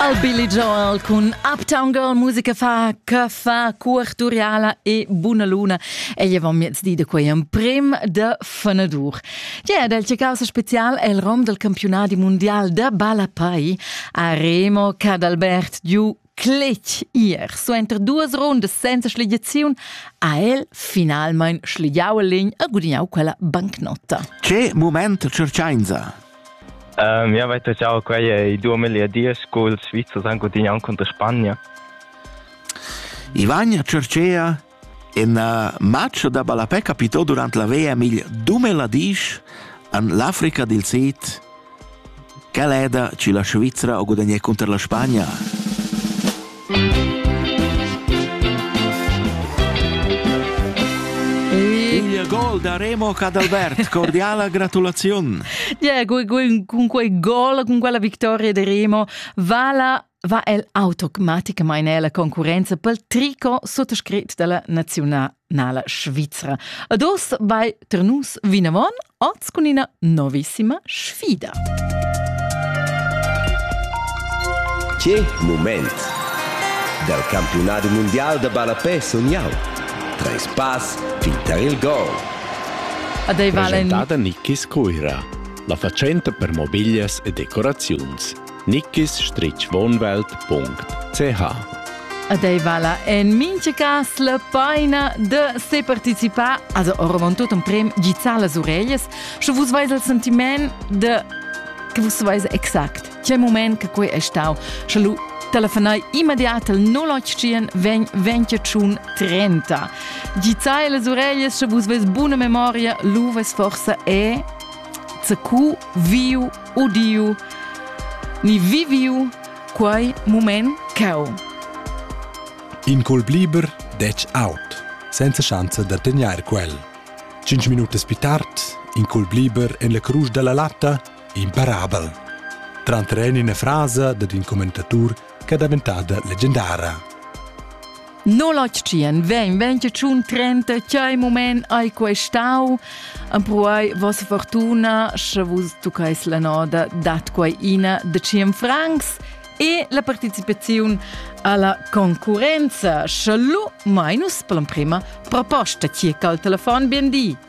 Al Billy Joel cun Uptown Girl musica fa che fa cuorturiala e buna luna ei avon miezdi da quei emprim de fenadur. Gia del causa special el rom del campionati mondial de ballapei a Remo Cadalbert giu cletg ir. Suenter duas rundas senza schligiaziun ha el finalmein schligiau a legn e gudignau quella bancnotta. Che moment cercainza! Jeu veit aschia quei ei duamilli a diesch culs Svizzers han gudignau cunter Spagna. I vagna Cercea in uh, match da ballapè capitò durant la VM il 2010 an l'Africa dil Sid. Quel eda ci la Svizzera o gudagnè contro la Spagna. Il gol da Remo Cadalbert, cordiala gratulaziun. Diego, con quei gol, con quella vittoria di Remo, vala va el automaticamente nella concorrenza pel tricot sottoscritto dalla nazionale svizra. Ados vai Ternus vinavon oz cun ina novissima sfida. Che moment! Dal campionat mundial da ballapè sun jau. Treis pass fin tar il gol. Ad ei valen... Presentada Niki Scuira, la fatschenta per mobiglias e decoraziuns. nickisstrichwohnwelt.ch Ed ei vala en mincha cas la paina de se participar, also oravon tot un prem gizzar las ureglias, sche vus veis il sentiment de che vus veis exact c'è moment che quei è stau, sche lu telefonai immediat al 081 20 30. Gizzai las ureglias, sche vus veis buna memoria, lu veis forse e CQ viu udiu ni viviu quei mument cau. In colp liber detg out, senza schanza da tegnair quel. Cinque minutes più tard, in colp liber en la cruz della latta, imparabel. Tranter in frase dad in commentatur che è daventada leggendara. No latschien, vegn, vegn che tschun trenta, chai moment hai questau, empruai vossa fortuna, sche vus tucais la noda dat quai ina de cien francs e la participazione alla concurenza. Schalu, Minus, per l'emprima proposta, ti al telefon, bien di.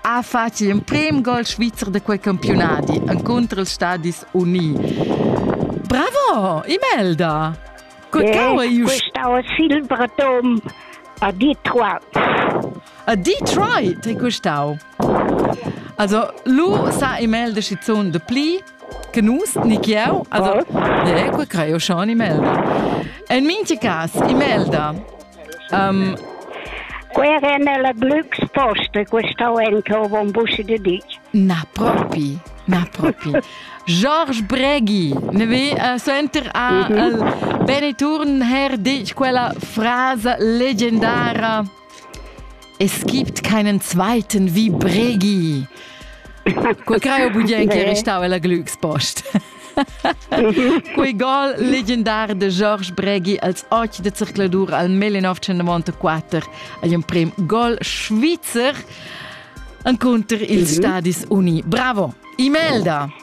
ha fatg l'emprim gol svizzer da quei campiunadi encunter ils Stadis Uni. Bravo, Imelda! Quecau è ius. Questau è Silber Dom a Detroit. A Detroit è questau. Also, lu sa Imelda schizun de pli che nus, ni che eu. Also, oh. yeah, quei creo schon Imelda. En minti cas, Imelda, Um, Quei era nella Glück posta, questa anche o buon buscio di dic. Na propi, na propi. George Breghi ne vi uh, senter a uh, Beneturn her dic quella frase legendara Es gibt keinen zweiten wie Bregi. Quei creo budien che restava la Glückspost. Quei gol legendar de Georges Bregi als 8 de zircladur al 1994 agl emprem gol svizzer encontr ils mhm. Stadis Uni. Bravo! Imelda!